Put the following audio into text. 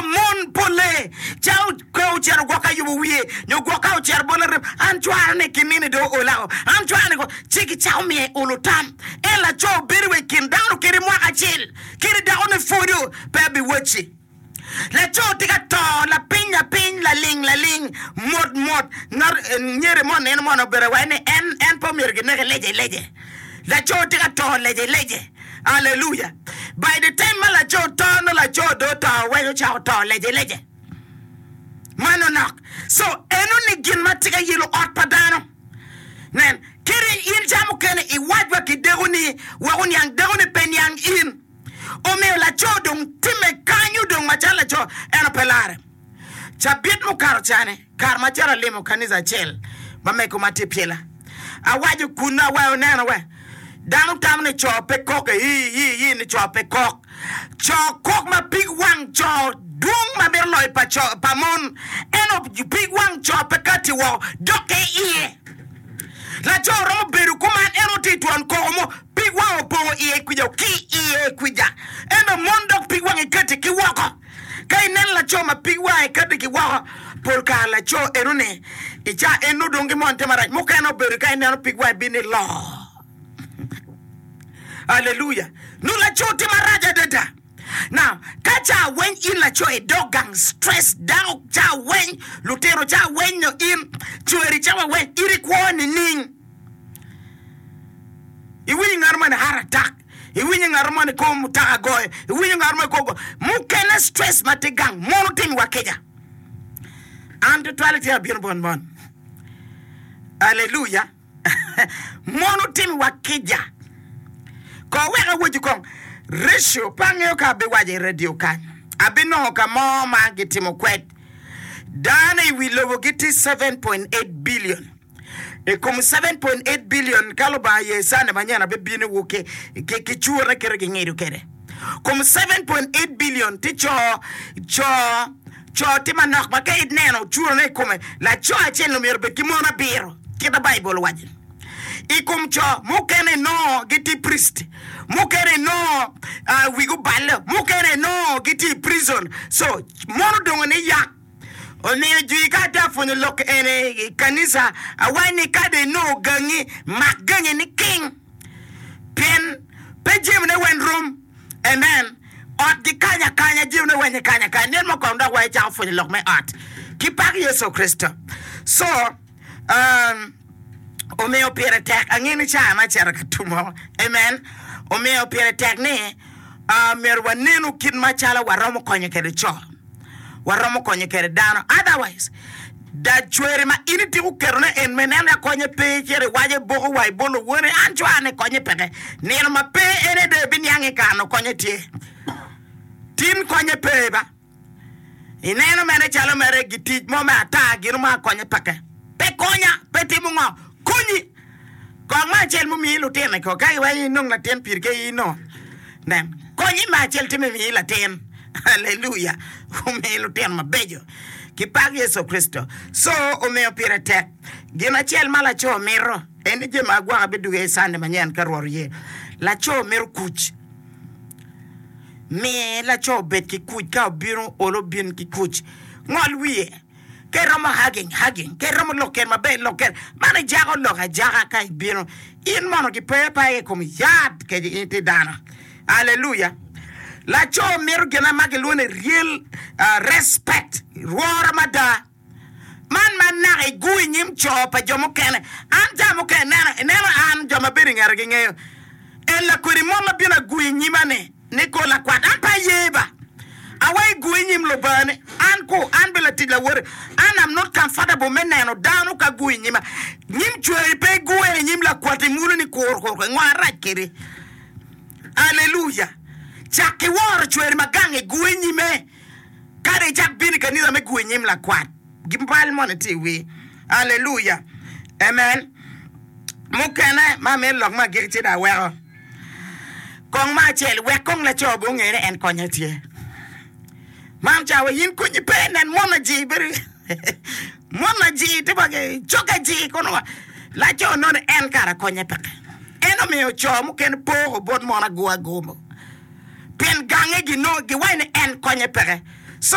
Mon polle ca pe ocito gwok ka yubo wiye nyo gwok ka ocito bot larem. An cwara ni kinini do ola o. An cwara ni ko ci gicako miye olo tam. En laco bedo wa i kin dano kede mwaka acel kede dako ne pwodo pe abiwacci. Laco tye ka to lapiny lapiny laling laling mot mot. Ngat nyere mo neno moni obedo awai ni en en pe omyero gineke lece lece. Laco tye ka to lecelece. Aleluya! By the time ma laco to, nongo laco dong oto weko ca oto lecelece. Mano nok. So, enoni gin ma tye ka yelo ot pa dano. Nen, kadi in ca mukene iwac wa ki dekoni wek oniang, dekoni pe niang in. Omiyo laco dong timme kanyo dong macalo laco, eno pe larre. Cabit mukato ca-ni, Kare ma cito alimo kanica acel ma mego ma tye Pyela, awaco kunnu awaco neno we, dano tamo ni co pe kok e ii ii ii ni co pe kok. Co kok ma pig wang co dwong ma mito loyo pa co pa mon eno pig wang co pe kati woko dokke iye. Laco romo bedo kuman en otir twon koko mo pig wang opongo iye kwica ki iye kwica eno mon dok pig wangi kati ki woko. Ka ineno laco ma pig wange kati ki woko, pol kare laco enoni i ca ennu dong gimon te marac. Mukene obedo ka ineno pig wange bino ni loo. Aleluya! Nu laco tye marac adada. Now, ka ca weny in laco idok gang stress, dako ca weny, lutino ca weny nyo in cweri ca waweny, in ikwo nining? Iwinyo ngano ma ni heart attack. Iwinyo ngat mo ni kor mutoka goye, iwinyo ngat mo kor mukene stress ma tye gang mono timi wa kica. An tutwale tye abino bot mon. Aleluya. mono timi wa kica. Ko wek awacu kong ratio pe angeyo ka abiwaco i radio kany. Abinongo ka mo ma gitimo kwed dano i wi lobo gitye 7.8 billion. I kom 7.8 billion ka Lubanga ye cane manyen abe bino wu ki ki cure ne kite gingido kede. Kom 7.8 billion ti co co co ti manok ma ka ineno cure ne ikome laco acel omyero bed ki mon abiro kita Bible waco. I kom co mukene nongo giti priest mukene nongo uh, wigi oballe mukene nongo giti prison so mon odongo ni yak Omiyo jwi ka atye pwonyo lok eni i kanisa, awaci ni ka dong inongo gangi, mak gangi niking. Pien pe jemo ne weny rom. Amen. Ot gikanyo akanya, jemo ne weny gikanyo akanya. Nino mo kono dok wa icako pwonyo lok me ot. Ki pak Yecu Kricito. Co. Omiyo pire tek, angeyo ni caa me cito ka tum oo, amen, omiyo pire tek ni myero wanenu kit macalo waromo konyo kwede co, waromo konyo kwede dano, otherwise dacweri ma in ityeko ketone en me neno ni akonye pe cito iwaco iboko wa ibol lowoni an cwaa ni konye peke, nino ma pe en aye dong ebiniange i kare-ni konye tye, tin konye pe ba. Ineno mene calo mere gitic mo me ata gino mo akonye peke pe konya pe timo ngo konyi kong me acel mumiyi lutino iko ka iweny inong latin piri ke i no nen konyi me acel timo imiyi latin aleluya omiyi lutino mabeco ki pak Yecu Kricito so omiyo pire tek gin acel ma laco mito en ni jemo agwaka biduge i Sunday manyen ka Rwot oye laco mito kuc Mi laco obed ki kuc ka obino olo bin ki kuc. Ngol wiye. Ka iromo hugging, hugging. Ka iromo lokke maber, lokke. Man ijako lok ajaka ka ibino. In mono gipe pe aye i kom yat kec in itye dano. Aleluya! Laco mito gine ma gilwongo ni real ah, respect, lworo mada. Man man naka igu i nyim co pa jo mukene. An jami mukene ineno, ineno an, jo ma bedo i ngeta gingeyo. En lakwedi mot ma bino agu i nyima-ni, ni kor lakwat, an pe aye ba. Awa igu i nyim Lubanga-ni, an ku, an be latic lawote. An am not comfortable me neno dano ka gu i nyima. Nyim cweri pe igure i nyim lakwat imulo ni kur kur kur, ngo arac kedi? Aleluya! Cak ki woro cweri ma gang igu i nyime. Kadi icak bino i kanisa me gwe nyim lakwat, gin bal moni itye i wir. Aleluya! Amen! Mukene ma amito lok me agikki ci dong aweko kong me acel, wek kong laco bene onge ni en konye tye. Mam cawa in konyi pe, nen mona jii bedo. Mon ajir tye wa ki cok ajir kono wa laco nongo en kara konye peke en omiyo coo mukene poko bot mon ago ago mogo pien gange gi nongo gi waco ni en konye peke so